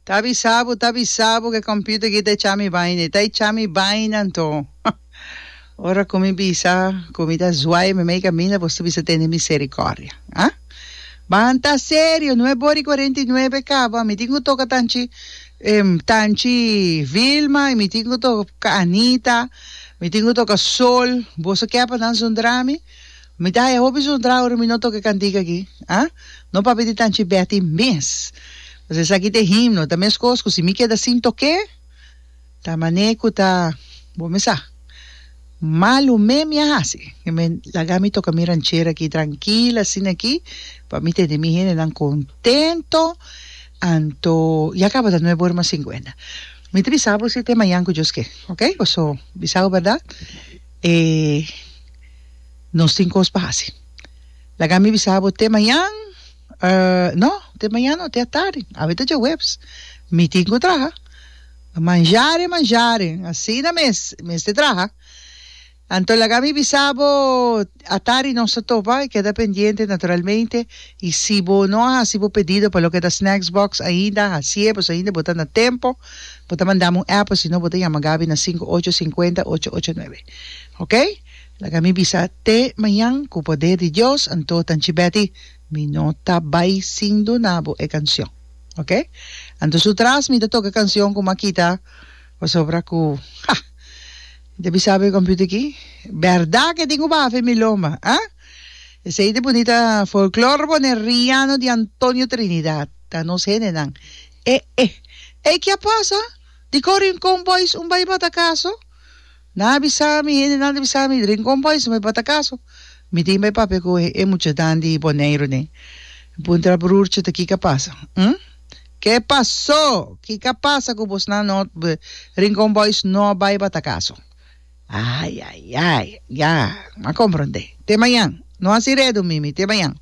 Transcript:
Ta bisa bo, ta bisa bo cu e computer guita echa mi baina, e ta echa mi baina anto. Ora cu mi bisa cu mi ta zwai mi mei caminda, boso bisa tene misericordia. Ha? Ban ta serio, no e bor i cuarenta i nuebe caba, mi tin cu toca tanchi, em, tanchi Vilma, mi tin cu toca Anita, mi tin cu toca Sol, boso kepa nan zundra mi? Mi ta e hopi zodra ora mi no toca e cantica aki, ha? No papia di Tanchi Betty mes! Pasobra esaki ta e himno, ta mescos cu si mi keda sin tocaé, ta mané cu ta, bo mi sa, malu mé mi a haci. Mi me laga mi toca mi ranchera aki trankila asina aki pa mi tene mi hendenan contento, anto ya caba ta nuebe ora mas cincuenta. Mi ta bisa bo si te mañan cu Dios ke, oke? Paso bisa bo berdad, e. Nos tin cos pa haci. Laga mi bisa bo te mañan, eh, no, te mañan no, te atardi, awe ta djahuebs, mi tin cu traha. Manjaren, manjaren, asina mes, e mester traha. Anto laga mi bisa bo, atardi nos ta topa, e keda pendiente naturalmente, y si bo no a haci bo pedido pa loke ta Snacks Box ainda, haci'e, pues ainda bo ta na tempo, bo ta mandami un app, osino bo ta yama Gaby na sinku ocho singenta ocho ocho nuebe, ok. Laga mi bisa te mañan ku poder di Dios, anto Tanchi Betty mi no ta bai sin duna bo e kansjon. Ok. Anto su tras mi ta toka kansjon ku Makita pasobra ku ha mi ta bisa bo e computer aki bèrda ke tin ku bafe mi loma ha. Esei ta bunita folklor boneriano di Antonio Trinidad ta nos hendenan e e. Ei kia pasa? Dikor Rincon Boys un bai bata kaso? Nan a bisa mi, hendenan ta bisa mi, Rincon Boys mi bota caso. Mi tin bay papia cu e muchadan di Boneiru den. Mi puntra broertje ta kica pasa? Hm? Ke paso? Kica pasa cu bosnan no, Rincon Boys no a bay bata caso? Ay, ay, ay, ya, a comprende. Te mayan. No haci redu, Mimi, te mayan.